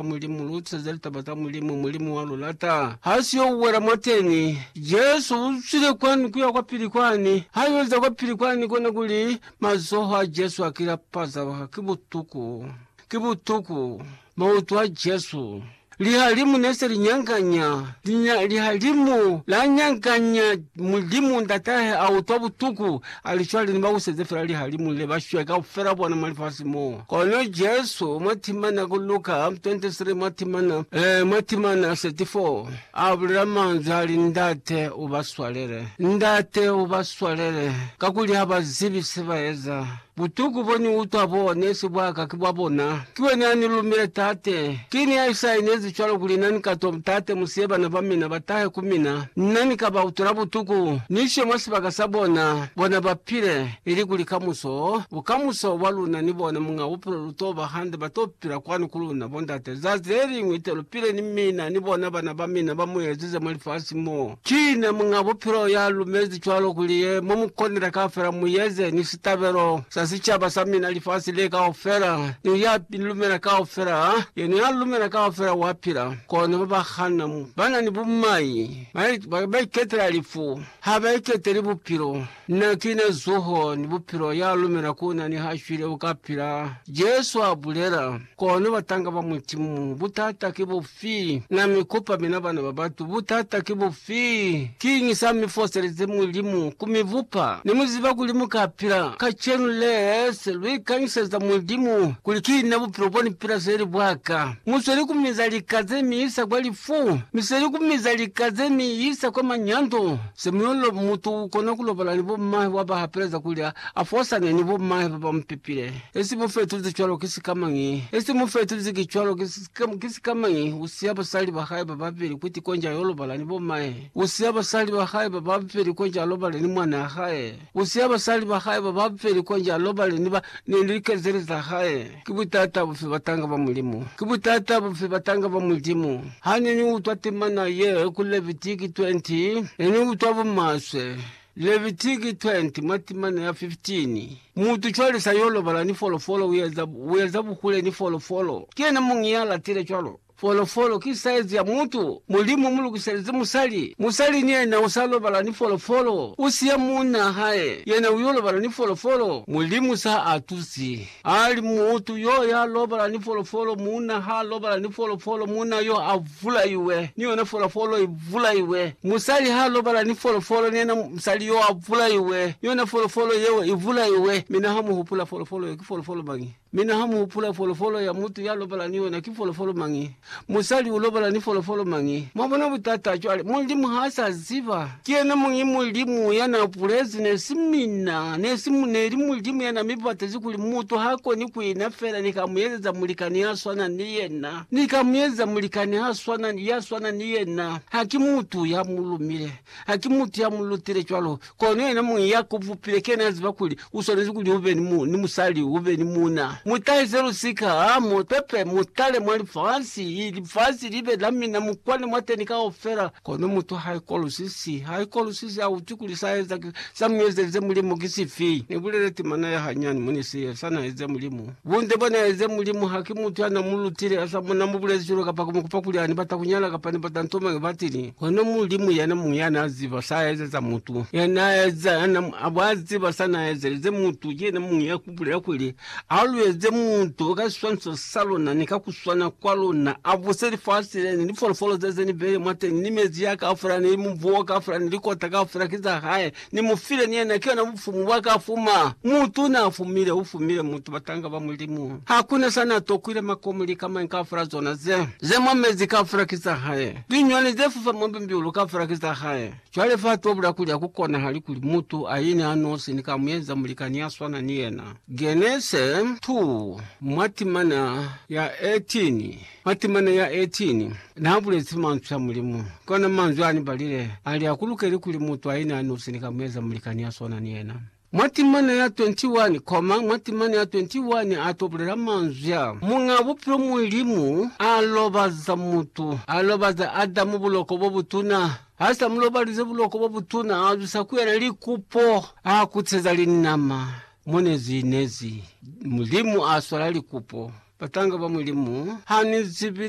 kwa Mulimu, lu teza litaba za Mulimu, Mulimu wa lu lata. Ha si yo uwela mwateni. Jesu u zwile kwani kuya kwa pili kwani. Ha yo za kwa pili kwani, kona kuli mazoho a Jesu a kila pazaba. Ki butuku. Ki butuku. Mautu a Jesu. Lihalimu ne se li nyanganya. Lihalimu la nyanganya. Mulimu Ndatahe a utwa butuku. Ali, Cwale ni ba buseze fela lihalimu le, ba shwe kaufela bona mwa lifasi mo. Kono Jesu, mwa timana ku Luka 23, mwa timana, eh, mwa timana 34, A bulela manzwi a li, Ndate, U ba swalele. Ndate, U ba swalele, kakuli ha ba zibi se ba eza. Butuku bo Ni utwa bo ne si bwa Ka, ki bwa bona. Ki wena ya ni lumile, Tate. Ki ni ya isa inezi cwalo kuli na ni ka to, Tate, mu siye bana ba mina ba tahe ku mina. Na ni ka ba utwela butuku, ni ishe mwa sibaka sa bona, bona ba pile, ili kuli kamuso, bukamuso bwa luna ni bona, Muñ'a Bupilo, lu to ba hande, ba to pila kwanu ku luna, Bo Ndate. Zazi le liñwi te lu pile ni mina, ni bona bana ba mina ba mu ezize mwa lifasi mo. Ki ne Muñ'a Bupilo ya lumezi cwalo kuli ye mo mu konile kaufela mu yeze ni sitabelo sa sicaba sa mina lifasi le kaufela, ni ya lumela kaufela, ha yena ya lumela kaufela wa pila. Kono ba ba hana, ba na ni bumai, ba, ba, ba iketela lifu, ha ba iketeli Bupilo. Na kina zuho ni bupilo, ya lumela ku na ni ha shwile u ka pila, Jesu a bulela. Kono batanga ba Mulimu, butata ki bufi? Na mi kupa mina bana ba batu, butata ki bufi? Kiñi sa mi foselezi Mulimu ku mi bupa? Ne mu ziba kuli mu ka pila. Kacenu les lu ikanyiseza Mulimu kuli, Ki na bupilo bo ni pila seli bwa ka. Mu sweli ku miza lika ze mi isa kwa lifu, mi sweli ku miza lika ze mi isa kwa manyando. Samuel mutu ukona kulobala ni bommahe waba hapeleza kuli afosane ni bommahe baba mupepile. Esi mufetuzi cwalo ki sikamañi? Esi mufetuzi ki cwalo ki sikamañi? Usiya basali bahae bababeli kuti konji ayo lobala ni bommahe. Usiya basali bahae bababeli konji alobale ni mwanaa hae. Usiya basali bahae bababeli konji alobale ni ba, ni likezeli zahae. Ki butata bufi batanga ba Mulimu? Ki butata bufi batanga ba Mulimu? Ha ne ni utwa temana ye ku Levitiki 20, ne ni utwa bumaswe. Levitiki 20 mwa timana ya 15, Mutu cwale sa yo lobala ni folofolo, u eza, u eza buhule ni folofolo. Ki yena muñi ya latile cwalo. Folofolo ki saizi ya mutu. Mulimu mulukiselize musali. Musali ni yena usa lobala ni folofolo. Usiya muuna hae, yena uyo lobala ni folofolo. Mulimu sa atusi. Ali, Mutu yo ya lobala ni folofolo, muuna ha lobala ni folofolo, muuna yo a vulaiwe, ni yona folofolo i vulaiwe. Musali ha lobala ni folofolo, ni yena musali yo a vulaiwe, ni yona folofolo yeo i vulaiwe. Mi na ha muhupula folofolo yeo ki folofolo mañi? Mi na ha mu hupula folofolo ya mutu ya lobala ni yona, ki folofolo mañi? Musali u lobala ni folofolo mañi? Mwa bona butata? Cwale, Mulimu ha sa ziba. Ki yena muñi Mulimu ya na bulezi, ne si mina. Ne si, ne li Mulimu ya na mi batezi kuli mutu ha koni ku ina fela ni ka mu ezeza mulikani ya swana ni yena. Ni ka mu ezeza mulikani ha swana, ya swana ni yena. Ha ki mutu ya mu lumile. Ha ki mutu ya mu lutile cwalo. Kono yena muñi ya ku bupile kena ya ziba kuli u swanezi kuli u be ni, mu, ni musali, u be ni muuna. Mu tahise lusika, ha mu pepe, mu tale mwa lifasi, i, lifasi li be la mina, mu kwane mwateni kaufela. Kono mutu ha ikolwisizi, ha ikolwisizi, ha utwi kuli sa eza, sa mu ezelize Mulimu ki sifi. Ni bulele timana ya hanyani, mone se, sa na eza Mulimu. Bunde bwa na eza Mulimu haki mutu ya na mu lutile a sa mo na mu bulezi cwalo kapa ku mu kupa kuli a ni bata ku nyala kapa ni bata nto mañi batili. Kono Mulimu yana muñwi ya na ziba sa a ezeza mutu. Ya na eza, ya na abo a ziba sa na ezelize mutu, ki yena muñwi ya ku bulela kuli, A lu eze mutu ka siswaniso sa luna ni ka ku swana kwa luna, a buse lifasi le ni lifolofolo ze ze ni beile mwateñi, ni mezi ya kaufela, ni mubu o kaufela, ni likota kaufela ki za hae. Ni mu file ni yena, ki yona bufumu bwa ka fuma. Mutu na fumile, u fumile mutu, batanga ba Mulimu. Ha ku na sa na tokwile makomo lika mañi kaufela zona ze, ze mwa mezi kaufela ki za hae. Linyoni ze fufa mwa bimbiulu kaufela ki za hae. Cwale fa tobula kuli ha ku konahali kuli mutu a ine a nosi ni ka mu eza mulikani ya swana ni yena. Genese 2, mwa timana ya 18. Matemana ya 18 naabulezi manzwi a Mulimu, kona manzwi aanibalile ali akulukeli kuli mutu aina anosi ni ka mueza mulikani ya swana ni yena. Mwa temana ya 21, koma, mwa temana ya 21 ato bulela manzwi a, Muñaa Bupilo Mulimu alobaza mutu, alobaza Adamu buloko bobutuna, hasa mulobalize buloko bobutuna, azwisa ku yena likupo, aakuteza linama, Mo ne zi nezi Mulimu a swala likupo, batanga ba Mulimu ha ni zibi